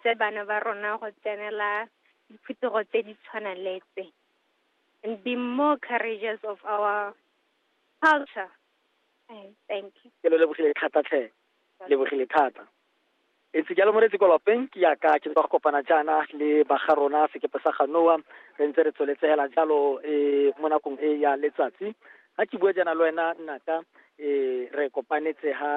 tse bana ba rona go tsenela diphuthego tse di tshwanang le tse and be more courageous of our culture Eh, thank you ke lo lebogile thata tlhe lebogile thata e ntse jalo moretsi kwa lapeng ke yaka ke tswa go kopana jaana le baga rona sekepe sa ganoa re ntse re tsweletsegela jalo um mo nakong e ya letsatsi ga ke bua jaana le wena nnaka um re kopanetse ha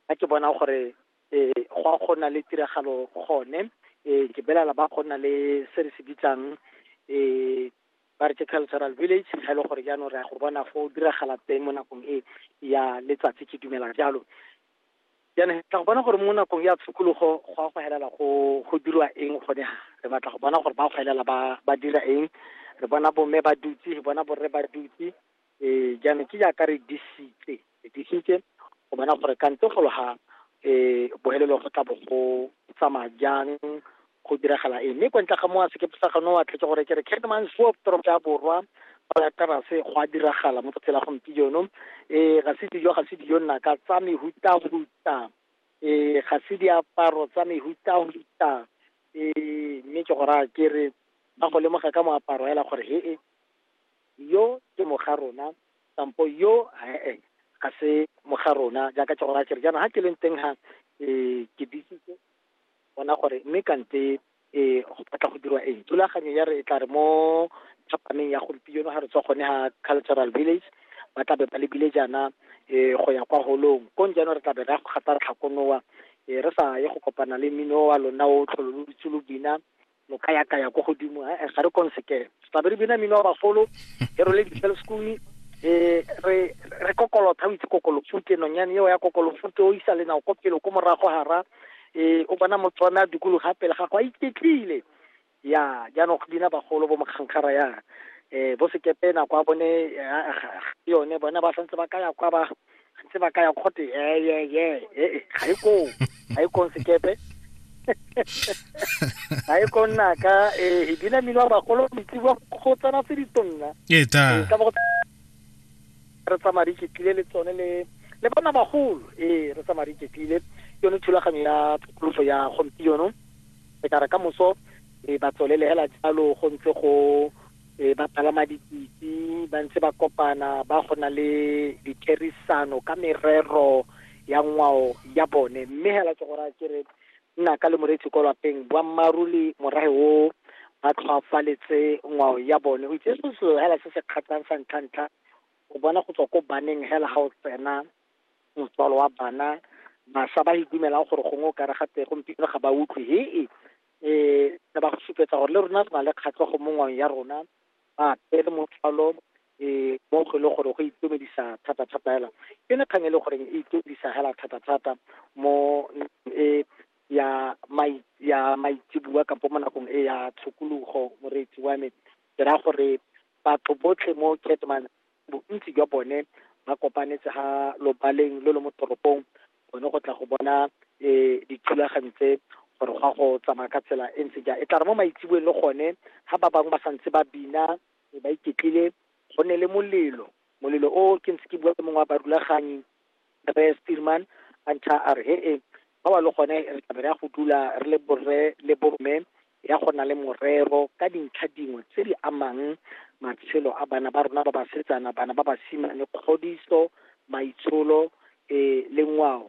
ga ke bona gore e go a go na le tiragalo gone e ke belela ba go na le se re se bitsang e ba re ke cultural village ga e le gore jaanong re ya go bona fo diragala teng mo nakong e ya letsatsi ke dumela jalo jaanong tla go bona gore mo nakong ya tshokologo go a go helela go go dirwa eng gone re batla go bona gore ba go helela ba ba dira eng re bona bomme ba dutse re bona borre ba dutse um jaanong ke jaaka re disitse re disitse go bona gore kante go loga um bohelelo go tla bo go tsamaya jang go diragala eng mme kwa ntle ga mo a sekepe sa gano wa tlhetse gore ke re catman swop toropo ya borwa ya terase go a diragala mo tsela gompieno um ga se dijo ga se dijo nnaka tsa mehutahuta um ga se diaparo tsa mehutahuta um mme ke go raya ke re ba go lemoga ka moaparo hela gore he e yo ke moga rona kampo yo ee ga se moga rona jaaka ke go raya kere jaanong ga ke leng teng ga um ke disitse bona gore mme kante um go batla go dirwa eng thulaganyo ya re e tla re mo thapameng ya gompieno ga re tswa gone ga cultural village ba tlabe ba lebile jaana um go ya kwa holong kong jaanong re tlabe re ya go gata tlhakonoa um re sa ye go kopana le mmino wa lona o tlhololotse lo bina lo ka ya kaya ko godimo eh, eh, ga re konseke tlabe re bina mino wa bagolo e role di-cell school eh re re kokolotha o itse kokolofute nonyane eo ya kokolofute o isa lenao ko pele ko morago hara eh o bona motswana dikolo ga pele ga go a iketlile ya jaanong go bina bagolo bo mokgankgara ya eh bo sekepe nako a bone eh, ah, ah, ah, yone bona ba santse ba ka ya kwa ba ntse ba kaya kgote yeyeye ee ga e koo ga e kong sekepe ga e kong naka ee e dina mmino wa bagolo metsi wa go tsena tse ditonna ee ta Ee, ka bo re tsamaya re iketlile le tsone le le bona bagolo ee re tsamaya re iketlile ke yone thulaganyo ya tokoloso ya gompieno re ka re ka moso ee ba tswelele hela jalo go ntse go e ba palama dipitse ba ntse ba kopana ba go na le ditherisano ka merero ya ngwao ya bone mme hela ke gore ke re nna ka le moretsi ko lapeng boammaaruri morahe o ba tlhwaafaletse ngwao ya bone o itse se selo hela se se kgatlhang sa ntlha-ntlha o bona go tswa ko baneng hela ga o tsena motswalo wa bana basha ba idumelang gore gongwe o kare gate gompieno ga ba utlwe hee um re ba go supetsa gore le rona re na le kgatlhego mo ngwang ya rona ba pele motlhalo um mo go e le gore go itumedisa thata-thata hela ke ne kgang e le gore e itumedisa hela thata-thata mo e ya mai ya maitsebua kampo mo nakong e ya tshokologo moreetsi wa me ke raya gore batho botlhe mo ketman bontsi jwa bone ba kopanetse ha lobaleng lo lo mo toropong bone go tla go bona um dithulaganyo tse gore go ya go tsamaya ka tsela e ntse jang e tla re mo maitseboeng le gone ga ba bangwe ba santse ba bina e ba iketlile go ne le molelo molelo o ke ntse ke bua le mongwe wa barulaganyi re steelman a ntšha a re he e Fa ba le gone re tla be re ya go dula re le borre le borme ya go na le morero ka dintlha dingwe tse di amang matshelo a bana ba rona ba basetsana, bana ba basimane, kgodiso, maitsholo eh, le ngwao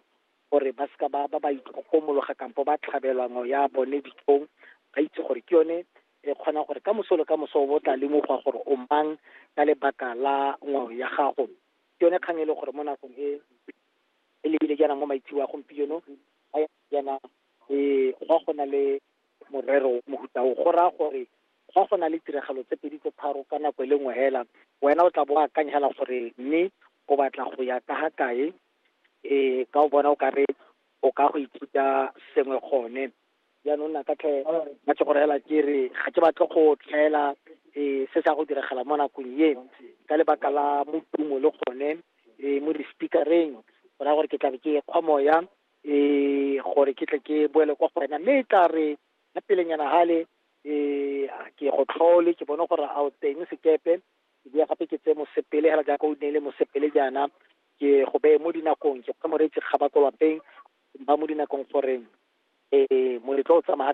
gore ba seka ba ba ba itlhokomologa kampo ba tlhabelwa ngwao ya bone ditlhong ba itse gore ke yone e kgonang gore ka moso le ka moso o bo tla lemogwa gore o mang ka lebaka la ngwao ya gago ke yone kgang e le gore mo nakong e e lebile jaanang mo maitseo a gompieno a yana e go go na le morero mohuta o go raya gore fa go na le tiragalo tse pedi tse tharo ka nako e le nngwe hela wena o tla bo akanya hela gore mme o batla go ya ka ga kae um ka o bona o kare o ka go ithuta sengwe gone jaanong na ka tlhe ba ke go reela ke re ga ke batle go tlhaela um se sa go diragala mo nakong e ka lebaka la motumo le gone um mo di-speakereng go raya gore ke tlabe ke kgwa moya um gore ke tle ke boele kwa go wena mme e tla re ga pelenyana gale um ke go tlhole ke bone gore a o teng sekepe ke boya gape ke tseye mosepele hela jaaka o neile mosepele jaana ke go beye mo dinakong ke kgwe moreetsi kgaba ko lapeng ba mo dinakong gore um moletlo o tsamaya